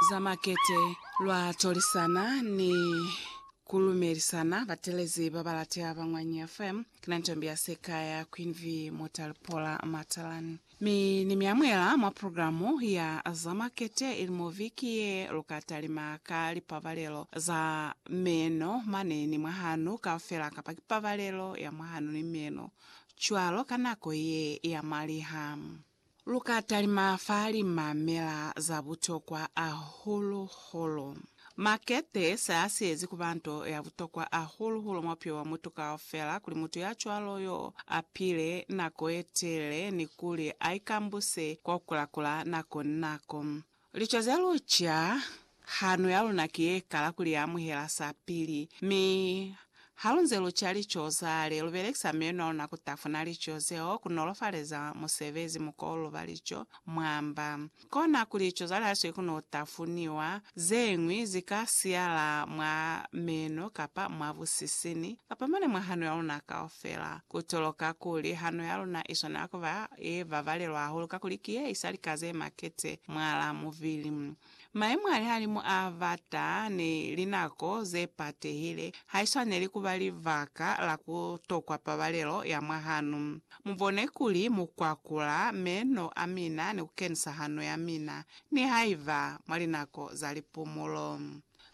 za makete lwa tolisana ni kulumelisana batelezi babalate ba Ngwanyi FM. Kina Ntombi ya Seka ya Queen V Mutalipola Matalani. Mi ni mi amuela mwa programu ya za makete ilimo viki ye luka talima ka lipabalelo za meno mane ni mwahanu kaufela kapa ki pabalelo ya mwahanu ni meno cwalo ka nako ye ya maliha. Lu ka talima fa limamela za butokwa ahulu-hulu. Makete se a siyezi ku ba nto ya butokwa ahulu-hulu mwa bupilo bwa mutu kaufela kuli mutu ya cwalo y'o a pile nako ye telele ni kuli a ikambuse kwa ku kula-kula nako ni nako. Lico ze luca, Hano ya luna ki ye kala ku li amuhela sapili. Mi, halunze lu ca lico zale, lu belekisa meno a luna ku tafuna lico zeo, ku nolofaleza musebezi mukoulu ba lico, mwa mba. Kona kuli lico zale ha swi kuno tafuniwa, ze ñwi zi ka siyala mwa meno, kapa mwa busisini, kapa mane mwa hano ya luna kaufela. Ku toloka kuli hano ya luna i swanela ku ba ye babalelwa hahulu kakuli ki ye isa lika ze makete mwalaa mubili. Mayemo a lihalimu a bata ni linako ze patehile ha i swaneli ku ba libaka la ku tokwa pabalelo ya mwa hano. Mu bone kuli mu kwakula meno a mina ni ku kenisa hano ya mina, nihaiba mwa linako za lipumulo.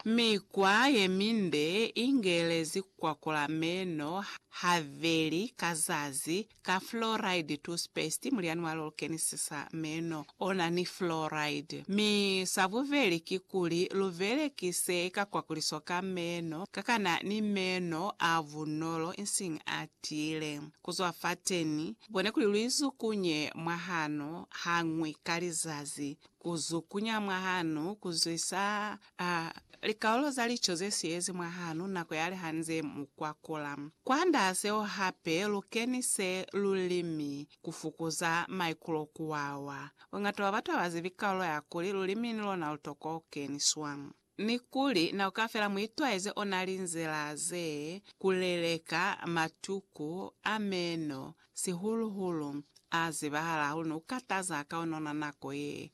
Mikwa ye minde i ngelezi kwakula meno habeli ka zazi ka fluoride toothpaste, mulyani wa lol kenisisa meno o na ni fluoride. Mi sa bubeli kikuli lu belekise ka kwakuliso ka meno ka ka na ni meno a bunolo insiñi a tiile. Ku zwa fateni, bone kuli lu izukunye mwahano hañwi ka lizazi. Ku zukunya mwahanu, ku zwisa a likaulo za lico ze siyezi mwahanu nako ya liha nze mu kwakula. Kwandaa seo hape, lu kenise lulimi ku fukuza maikulo ku wawa. Bongata bwa batu ha ba zibi kaulo ya kuli lulimi ni lona lu tokwa ku keniswa. Mi kuli na ka fela mu itwaeze ona linzila ze ku leleka matuku a meno, sihulu hulu a zibahala hahulu ni ku kataza ka ona ona nako ye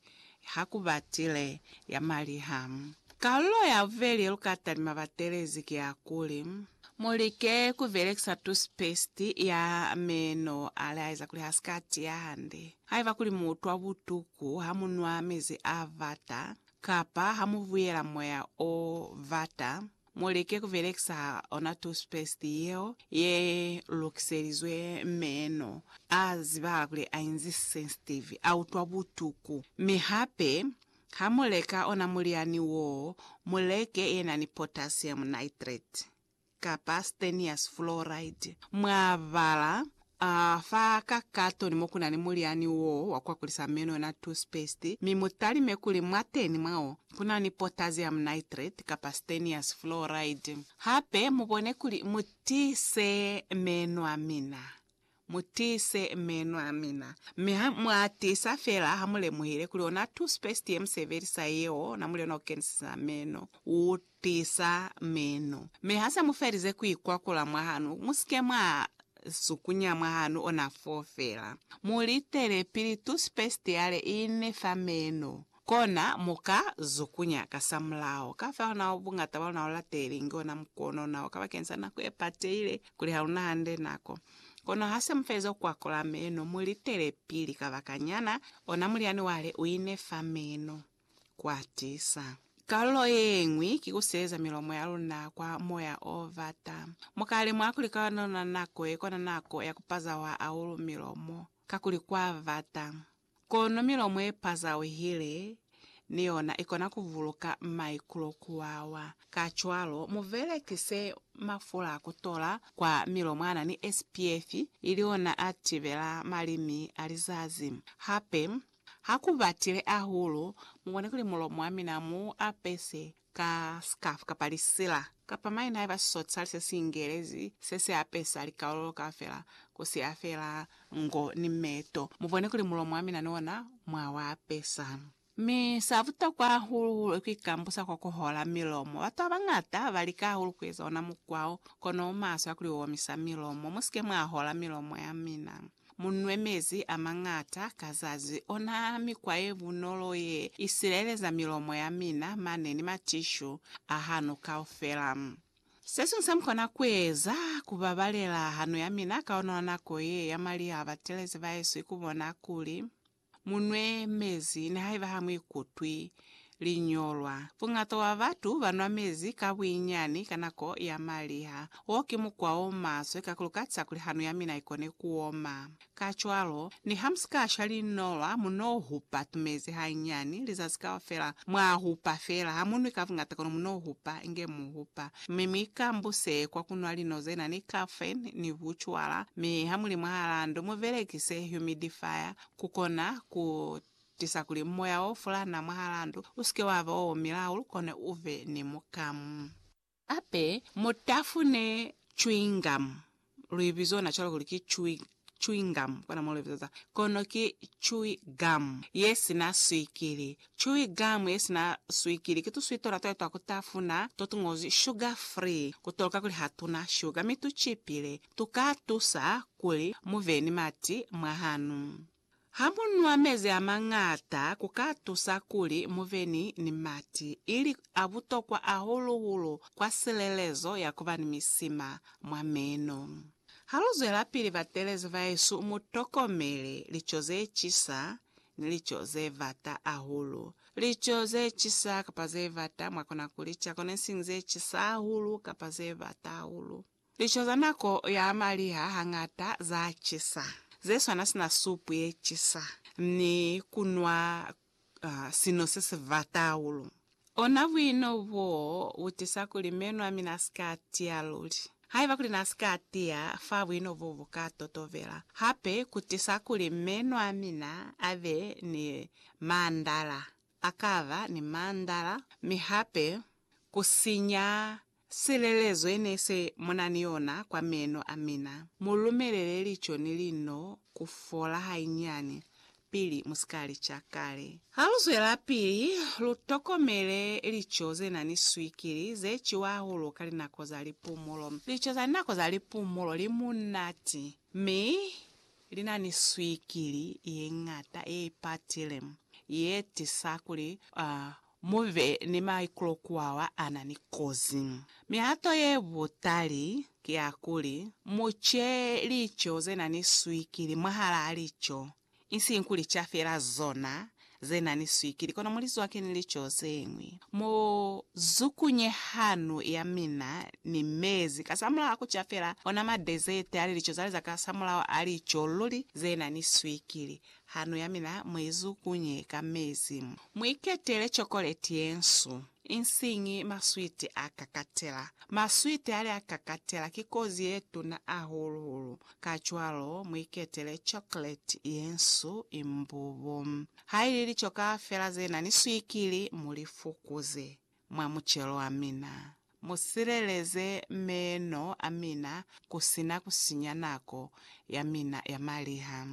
ha ku batile ya maliha. Kalulo ya bubeli ye lu ka talima batelezi ki ya kuli, mu like ku belekisa toothpaste ya meno a laeza kuli ha si ka tiya hande. Haiba kuli mu utwa butuku ha mu nwa mezi a bata, Kapa ha mu buyela moya o bata, mu like ku belekisa ona toothpaste yeo ye lukiselizwe meno. A zibahala kuli a inzi sensitive, a utwa butuku. Mi hape, ha mu leka ona mulyani woo, mu leke ye na ni potassium nitrate. kapa stanious fluoride mwa bala a fa ka katoni mo ku na ni mulyani wo wa ku akulisa meno na toothpaste, mi mu talime kuli mwateni mwa wo ku na ni potassium nitrate kapa stanious fluoride. Hape mu bone kuli mu tiise meno a mina Mutiise meno amina. Mi ha muatiisa feela ha mulemuhile kuli ona toothpaste yemusebelisa yeo, ona muli ona ukenisisa meno, utiisa meno. Mi hase mufelize kuikwakula mwahanu, musike mwa sukunya mwahanu ona foo feela. Mulitele pili toothpaste yale iine fa meno. Kona mu ka zukunya ka sa mulao. Kafeho na o bungata bwa luna o lateli, inge ona mukono ona o ka bakeni sa nako ye pateile, kuli ha luna hande nako. Kono ha se mu feza ku kwakola meno, mu litele pili kabakanyana, ona mulyani wa le u ine fa meno. Ku a tisa. Kalulo yeñwi ki ku seeza milomo ya luna kwa moya o bata. Mu ka lemuha kuli ka ona nako ye kona nako ya ku pazawa ahulu milomo, kakuli kwa bata. Kono milomo ye pazauhile ni yona i kona ku vuluka maikulo ku wawa. Kacwalo, mu belekise mafula a ku tola kwa milomo a na ni SPF, ili ona a tibela malimi a lizazi. Hape, ha ku batile ahulu, mu kone kuli mulomo wa mina mu apese ka scarf kapa lisila, kapa maina haiba sosali se si ingelezi se se apesa likalolo kaufela ku siya feela ngo ni meto. Mu bone kuli mulomo wa mina ni ona mwa u apesa. Mi sa butokwa hahulu-hulu ki ku ikambusa kwa ku hola milomo. Batu ba bañata ba lika hahulu ku eza ona mukwa wo, kono u maswe ha ku li u omisa milomo. Mu si ke mwa hola milomo ya mina. Mu nwe mezi a mañata ka zazi, ona mikwa ye bunolo ye i sileleza milomo ya mina mane ni matishu a hanu kaufela. Se siñwi se mu kona ku eza, ku babalela hanu ya mina ka ona nako ye ya mali ha batelezi bahesu i ku bona kuli, Mu nwe mezi nihaiba ha mu ikutwi liñolwa. Buñata bwa batu ba nwa mezi ka buinyani ka nako ya maliha. Wo ki mukwa o maswe kakulu ka ca kuli hanu ya mina i kone ku oma. Kacwalo, niha mu si ka sha liñolwa, mu n'o hupa tumezi hanyani. Lizazi kaufela mwa hupa feela. Ha mu nwi ka buñata kono mu n'o hupa inge mu hupa Mi mi ka mbuse kwa ku nwa lino ze na ni caffeine ni bucwala, mi ha mu li mwahalaa ndu mu belekise humidifier ku kona ku tisa kuli moya o fulana mwahalaa ndu u si ke wa ba o omile hahulu kone u be ni mukamu. Hape mu tafune chewing gum. Lu ibizona cwalo kuli ki chewy, chewing gum, kona mo lu ibiza za. Kono ki chewy gum ye sina swikili. Chewy gum ye sina swikili ki tuswi tona twa twa kutafuna to tu ngozwi sugar free, kutoloka kuli ha tuna shuga mi tu chipile. Tu ka tusa kuli mu be ni mati mwa hanu. Ha mu nwa mezi a mañata ku ka tusa kuli mu be ni ni mati, ili a butokwa hahulu-hulu kwa silelezo ya ku ba ni misima mwa meno. Ha lu zwelapili batelezi bahesu, mu tokomele lico ze cisa ni lico ze vata hahulu. Lico ze cisa kapa ze vata mwa kona ku li ca kona isiñi ze cisa hahulu kapa ze vata hahulu. Lico za nako ya maliha hañata za cisa, ze swana sina supu ye cisa ni ku nwa sino se si bata hahulu. Ona buino boo bu tisa kuli meno a mina a si ka tiya luli. Haiba kuli n'a si ka tiya, fa buino boo bu ka totobela hape ku tisa kuli meno a mina a be ni mandala, a ka ba ni mandala, mi hape ku sinya Silelezo ye ne se mu na ni yona kwa meno a mina. Mu lumelele lico ni lino ku fola hainyani pili mu si ka li ca kale. Ha lu zwelapili, lu tokomele lico ze na ni swikili ze ciwa hahulu ka linako za lipumulo. Lico za nako za lipumulo li munati, mi li na ni swikili ye ñata ye ipatile, ye tisa kuli Mu be ni maikulo ku bao ba na ni kozi. Mihato ye butali ki ya kuli, mu ce lico ze na ni swikili mwahalaa lico, isiñi ku lica fela zona ze na ni swikili, kono mu li zwake ni lico ze ñwi. Mu zukunye hanu ya mina ni mezi kasamulaho a ku ca fela ona madezeti a lilico za leza kasamulaho a lico luli ze na ni swikili. Hano ya mina mu i zukunye ka mezi. Mu iketele chokoleti ye nsu, insiñi maswiti a kakatela. Maswiti ali a kakatela ki kozi ye tuna ahulu-hulu, kacwalo mu iketele chokoleti ye nsu imbubu. Ha ili lichoka fela ze na ni swikili, mu li fukuze. mwa mucelo wa mina. Mu sileleze meeno a mina ku si na ku sinya nako ya mina ya maliha.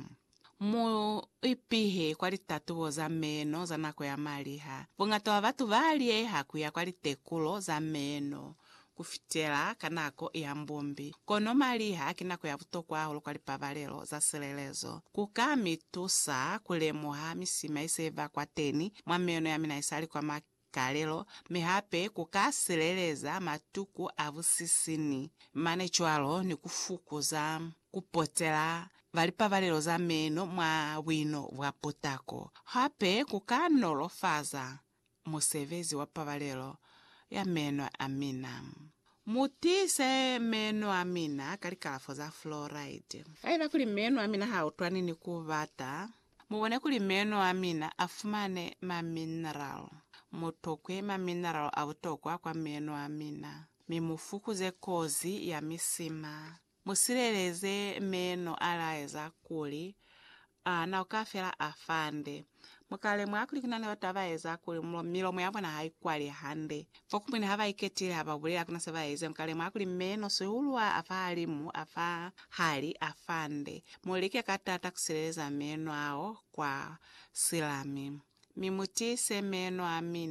Mu ipihe kwa litatubo za meeno za nako ya maliha. Buñata bwa batu ba liyeha ku ya kwa litekulo za meeno ku fitela ka nako ya mbumbi. Kono maliha ki nako ya butokwa hahulu kwa lipabalelo za silelezo. Ku ka mi tusa ku lemuha misima ye se ba kwateni mwa meeno ya mina isali kwa kalelo, mi hape ku ka sileleza matuku a busisini mane cwalo ni ku fukuza ku potela ba lipabalelo za meno mwa buino bwa putako. Hape ku ka nolofaza musebezi wa pabalelo ya meno a mina. Mu tiise meno a mina ka likalafo za fluoride. Haiba kuli meno a mina ha utwani ni ku bata, Mubone kuli meno amina afumane ma mineral. Mutokwe ma mineral abutokwa kwa meno amina, mi mufukuze kozi ya misima. Musileleze meno alaeza kuli ana uka fela afande. Mukalemuha kuli kunani batu abaeza kuli milomo yabona haikwali hande, Fokumwine ha ba iketile ha ba bulela kuna se ba ezi, nka lemuha kuli meno sihulwa a fahalimu a fa hali a fa nde. Mu like ka taata ku sileleza meno ao kwa silami, mi mu tiise meno a mine.